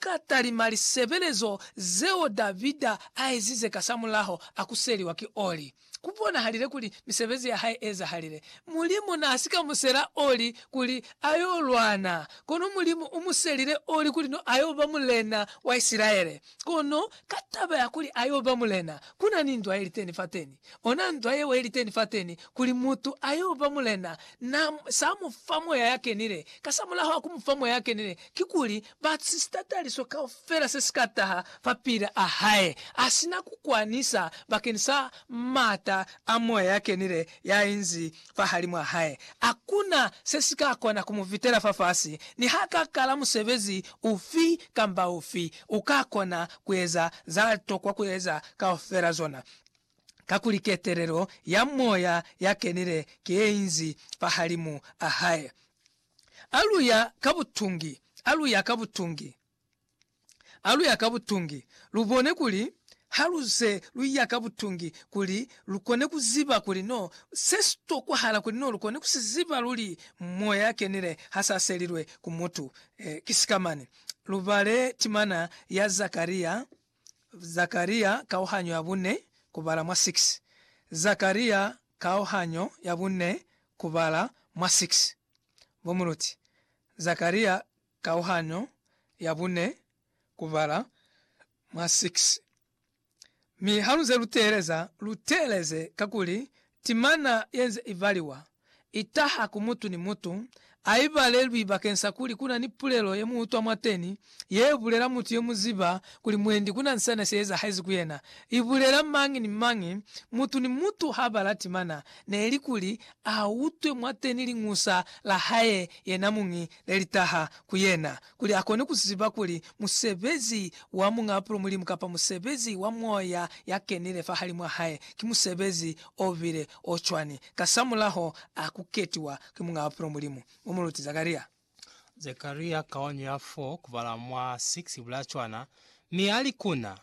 Ka talima lisebelezo zeo Davida aezize kasamulaho akuseliwa ki Oli, kubonahalile kuli misebezi yahae eezahalile. Mulimu naasika musela Oli kuli ayo lwana, kono Mulimu umuselile Oli kuli no ayo ba mulena wa Isilaele. Kono ka taba ya kuli ayo ba mulena, kuna ni ndwa yeliteni fateni. Ona ndwa yeo yeliteni fateni, kuli mutu ayo ba mulena, na sa mufa Moya yakenile. Kasamulaho akumufa Moya yakenile, kikuli Ba si sitataliso kaufela se si ka taha fapil'a hae, a si na ku kwanisa bakeni sa m'ata a Moya ya Kenile ya inzi fahalimw'a hae. A ku na se si ka kona ku mu vitela fafasi. Ni ha ka kala musebezi ufi kamba ufi, u ka kona ku eza za tokwa ku eza kaufela zona, kakuli ketelelo ya Moya ya Kenile ki ye inzi fahalimu a hae. Alu ya ka butungi, alu ya ka butungi, alu ya ka butungi, lu bone kuli ha lu ze lu ya ka butungi kuli lu kone ku ziba kuli no se si tokwahala kuli no lu kone ku si ziba luli Moya ya Kenile ha sa selilwe ku mutu. Ki sikamani? Lu bale timana ya Zakaria. Zakaria kauhanyo ya bune kubala mwa 6 Zakaria kauhanyo ya bune kubala mwa 6 Bo muluti Zakaria kauhanyo ya bune kubala mwa 6 Mi halunze luteeleza, luteeleze kakuli timana yenze ibaliwa itaha ku mutu ni mutu, a i balelwi bakeng sa kuli ku na ni pulelo ye mu utwa mwateni ye bulela mutu ye mu ziba kuli mwendi ku na ni sena se ezahezi ku yena. I bulela mañi ni mañi, mutu ni mutu ha bala timana, neli kuli a utwe mwateni liñusa la hae yenamuñi le li taha ku yena, kuli a kone ku ziba kuli musebezi wa Muñ'a Pulo Mulimu kapa musebezi wa Moya ya Kenile fahalimw'a hae ki musebezi o bile o cwani. kasamulaho a ku ketiwa ki Muñ'a Bupilo Mulimu u mu luti Zakaria. Zakaria kaonyo ya 4 kubala mwa 6 ibulaya cwana, mi a li ku na,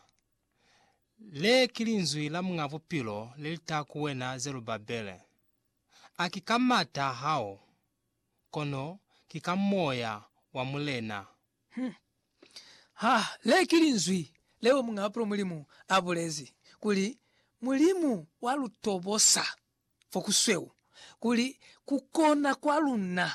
Le ki linzwi la Muñ'a Bupilo le li taha ku wena Zerubabele, A ki ka mata a hao, kono ki ka Moya wa Mulena Hum. Ha le ki linzwi leo Muñ'a Apulo Mulimu a bulezi, kuli, Mulimu wa lu tobosa fo ku sweu, kuli ku kona kwa luna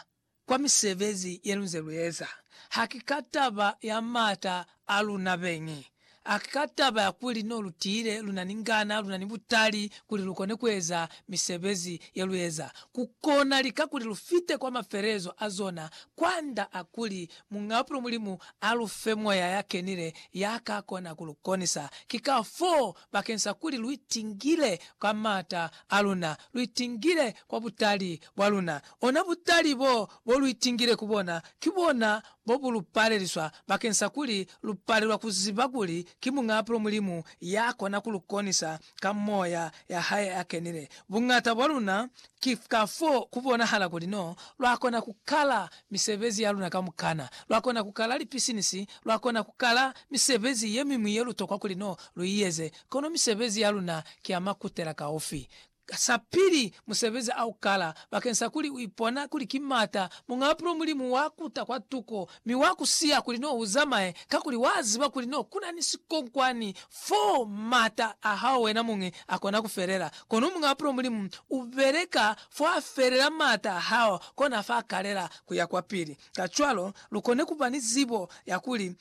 kwa misebezi ye lu nze lu eza. Ha ki ka taba ya m'ata a luna beñi, A Ka taba ya kuli no lu tiile, lu na ni ngana, lu na ni butali kuli lu kone ku eza misebezi ye lu eza. Ku kona lika kuli lu fite kwa mafelelezo a zona, kwand'a a kuli Muñ'apulo Mulimu a lu fe Moya ya Kenile ya ka kona ku lu konisa. Ki kafoo, bakeng sa kuli lu itingile kwa m'ata a luna, lu itingile kwa butali bwa luna. Ona butali b'o, b'o lu itingile ku bona, ki bona bo bu lu paleliswa bakeng sa kuli lu palelwa ku ziba kuli ki Muñaapulo Mulimu ya kona ku lu konisa ka Moya ya hae ya kenile. Buñata bwa luna, ki ka fo ku bonahala kuli n'o lwa kona ku kala misebezi ya luna kamukana. Lwa kona ku kala lipisinisi, lwa kona ku kala misebezi ye miñwi ye lu tokwa kuli n'o lu i eze, kono misebezi ya luna ki ya makutela kaufi. Ka sa pili, musebezi a u kala bakeng sa kuli u ipona kuli ki m'ata Muñ'a Pulo Mulimu wa kuta kwa tuko mi wa ku siya kuli n'o u zamaye, kakuli wa ziba kuli n'o ku na ni sikonkwani fo m'ata a hao wena muñi a kona ku felela. Kono Muñ'a Pulo Mulimu u beleka fo a felela m'ata a hao, kona fa kalela ku ya kwa pili. Kacwalo, lu kone ku ba ni zibo ya kuli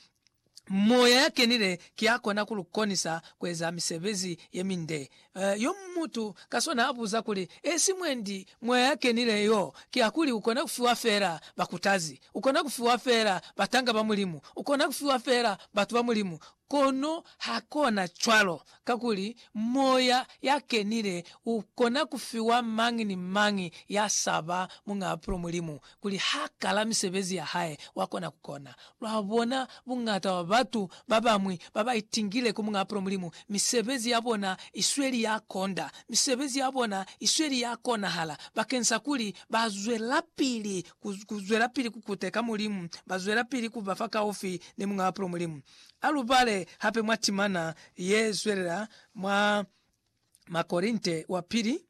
Moya ya Kenile ki ya kona ku lu konisa ku eza misebezi ye minde. Yo mutu ka swana a buza kuli, Esi mwendi, Moya ya Kenile yo ki ya kuli u kona ku fiwa fela bakutazi, u kona ku fiwa fela batanga ba Mulimu, u kona ku fiwa fela batu ba Mulimu, kono ha kona cwalo Kakuli Moya ya Kenile u kona ku fiwa mañi ni mañi ya sa ba muñ'a apulo Mulimu, kuli ha kala misebezi ya hae, wa kona ku kona. Lwa bona buñata bwa batu ba bañwi ba ba itingile ku muñ'a apulo Mulimu, misebezi ya bona i sweli ya konda, misebezi ya bona i sweli ya konahala bakeñsakuli ba zwelapili ku, ku zwelapili ku kuteka Mulimu, ba zwelapili ku ba fakaufi ni muñ'a apulo Mulimu. A lu bale hape mwa timana ye zwelela mwa Makorinte wa Pili,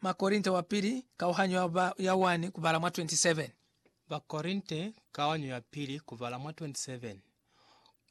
Makorinte wa Pili, kauhanyo ya ba, ya 1 kubala mwa 27. Bakorinte, kauhanyo ya pili, kubala mwa 27.